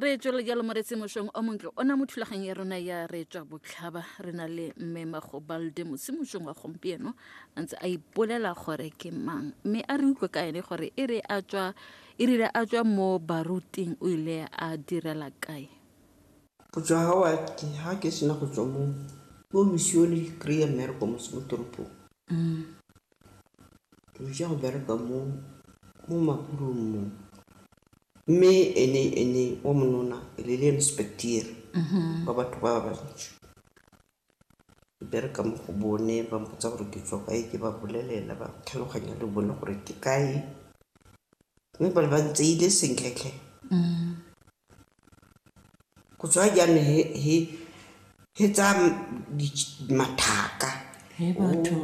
re tswelele jalo moretse mošong o montle o na mo thulaganyong ya rona ya re tswa botlhaba re na le mme magobalde mose mošong wa gompieno a ntse a ipolela gore ke mang mme a re utlwe ka ene gore e re a tswa e rile a tswa mo baruting o ile a direla kae go tswa ga wa ke ga ke sena go tswa mo ko misione kry-a mmereko mose mo toropong mm. Re ja go bereka mo mo makulong mo mme ene ene o monona le le inspecteer ba batho ba bantši ke bereka mo go bone ba mpotsa gore ke tswa kae ke ba bolelela ba tlhaloganya le bone gore ke kae mme ba le ba ntseile sentle tlhe Go tswa jaanong he, he, he tsa mathaka. He batho.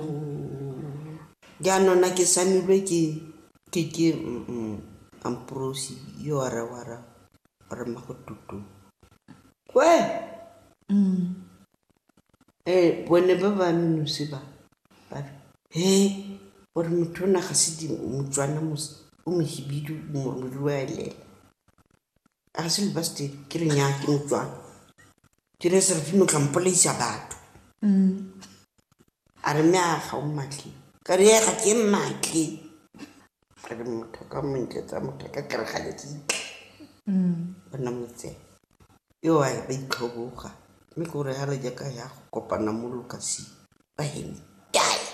Jaanong na ke samilwe ke, ke, ke mm, Amprosi yo a re wa ra, wa re mmago tutu. Kwe! Eh, bone ba ba menosi ba, ba re, he, gore motho o na ga se di, Motswana mos, o mohibidu, o mo, o mo ruelela. A re se le ba se dire, ke re nnyaa ke motswana. Ke re Serafina o tla mpolaisa batho. A re mme a ga o mmatle. Ka re ee ga ke mmatle. A re motho ka mo ntletsa motho ka ke re ga le kitla. Ba nna motseng. Yoo a ba itlhoboga mme ke gore ha re jaaka ya go kopana mo lokasing ba hemtaya.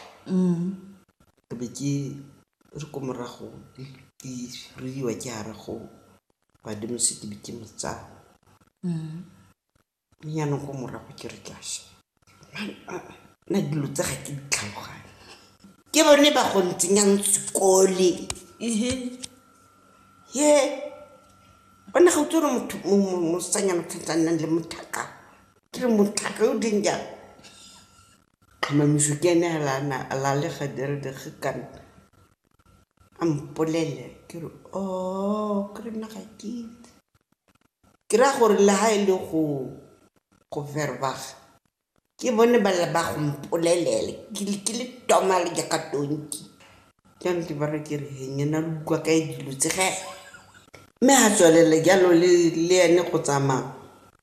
Ke be ke re ko morago ke ruiwa ke hara go badimo se ke be ke mo tsaya mme yanong ko morago ke re ke a sha na dilo tse ga ke ditlhaloganye ke bone ba go ntsenyang sekole ehe he one ga o tsere motho mosanyana tshwantsang nang le mothaka ke re mothaka o deng jang Tlhomamiso ke ene fela a na a lalega dire dire ge kana a mpolele ke re oh ke re nna ga ke itse. Ke raya gore le ha e le go go verbaga ke bone ba lla ba go mpolelele ke le ke le toma le jaaka tonki. Jaanong ke ba raya ke re he nnyena lo utlwa kae dilo tse ge? Mme ha tswelele jalo le le ene go tsamaya